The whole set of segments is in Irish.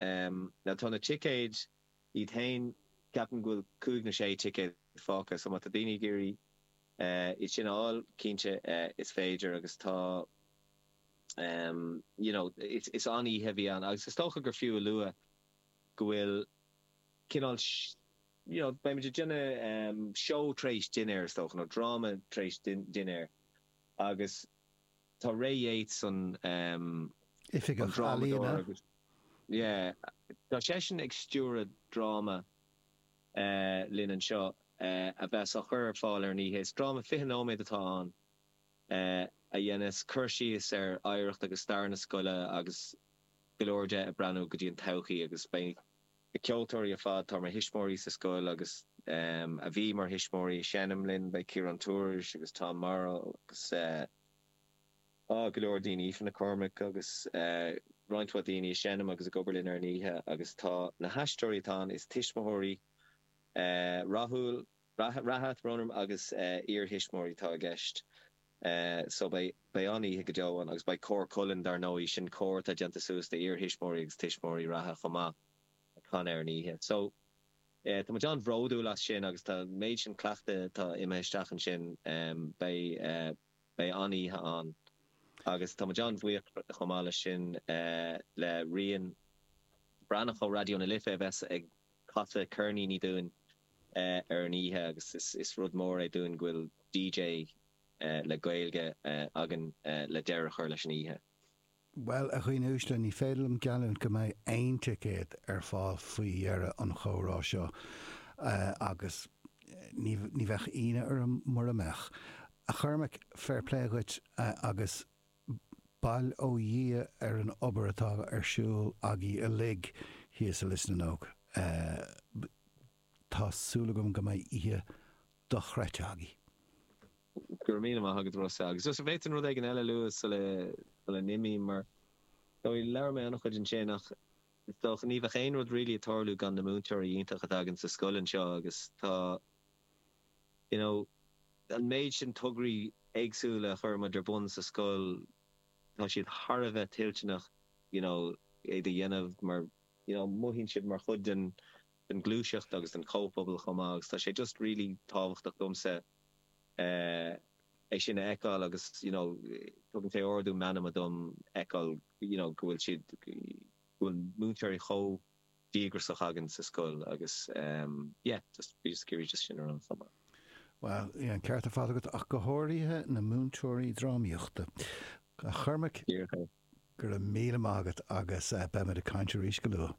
Now tá na ticéid iad féin, ceapaim go bhfuil cúig nó sé ticéad fágtha, so má tá daoine ag iarraidh iad sin a fháil, cinnte is féidir agus tá you know, is an-oíche a bheidh ann agus is dócha gur fiú a lua go bhfuil cineál you know, beidh muid ag déanamh seó tar éis dinnéir is dócha, nó dráma tar éis dinnéir agus. Tá Ray Yeates, an tOifigeach Ealaíon, drámadóir agus yeah tá seisean ag stiúradh dráma linn anseo a bheas á chur ar fáil ar an oíche. Is dráma fiche nóiméad atá ann a dhéanfas cur síos ar oidhreacht agus stair na scoile agus go leor de ag breathnú go dtí an todhchaí agus beidh Na ceoltóirí ar fad atá mar thuismitheoirí sa scoil agus a bhí mar thuismitheoirí ag seinm linn, beidh Ciarán Tourish agus Tom Morrow agus ah, go leor daoine, Aoife Nic Cormaic agus roinnt mhaith daoine ag seinm agus ag obair linn ar an oíche agus tá na haisteoirí atá ann is tuismitheoirí rathúil reatha, Ronerum agus iar-thuismitheoirí atá i gceist so beidh an-oíche go deo ann agus beidh Cór Cualann, dar ndóigh, sin cór atá déanta suas de iar-thuismitheoirí agus tuismitheoirí reatha chomh maith ag canadh ar an oíche so tá muid an-bhródúil as sin agus tá an méid sin cleachtaidh atá imithe isteach ansin beidh Beidh an-oíche ann agus tá muid an-bhuíoch chomh maith leis sin le Rian Breathnach ó Raidió na Life a bheas ag casadh ceirníní dúinn ar an oíche agus is rud mór é dúinn go bhfuil DJ le Gaeilge againn le deireadh a chur leis an oíche. Bhuel, a dhaoine uaisle, ní féidir liom geallúint go mbeidh aon ticéad ar fáil faoi dheireadh an chomhrá seo, agus ní bheadh ionadh orm mura mbeadh. A Chormaic, fair play dhuit, agus bail ó Dhia ar an obair atá ar siúl agaibh uilig thíos i Lios na nÓg. Tá súil agam go mbeidh oíche dochreidte agaibh. Go raibh míle maith agat a Rossa. Agus just an bhféadfainn rud éigin eile a lua sula n-imím? Ar ndóigh labhair mé an-chuid ansin ach is dócha ní bheadh aon rud really ag tarlú gan na múinteoirí iontacha atá againn sa scoil anseo agus tá you know an méid sin tograí éagsúla a chuir muid ar bun sa scoil tá siad thar a bheith toilteanach you know iad a dhéanamh mar you know mothaíonn siad mar chuid den den ghluaiseacht agus den chomhphobal chomh maith agus tá sé just really tábhachtach domsa é sin a fheiceáil agus you know tugann sé ardú meanma dom a fheiceáil you know go bhfuil siad go bhfuil múinteoirí chomh díograsach againn sa scoil agus ehm yeah just bhí just curious just sin a rá chomh maith. Bhuel, bhí an ceart ar fad agat, ach go háirithe na múinteoirí drámaíochta. A Chormaic, go raibh míle maith agat agus beimid ag caint arís go luath.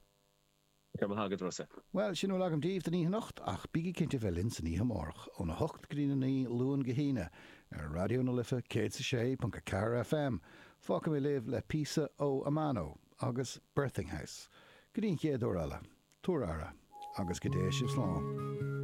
Go raibh maith agat Rossa. Bhuel, sin a bhfuil agam daoibh don oíche anocht, ach bígí cinnte bheith linn san oíche amárach, óna hocht go dtí na naoi, Luan go hAoine, ar Raidió na Life 106.4 FM. Fágfaidh mé libh le píosa ó Amano agus Birthing House. Go dtí an chéad uair eile, tabhair aire, agus go dté sibh slán.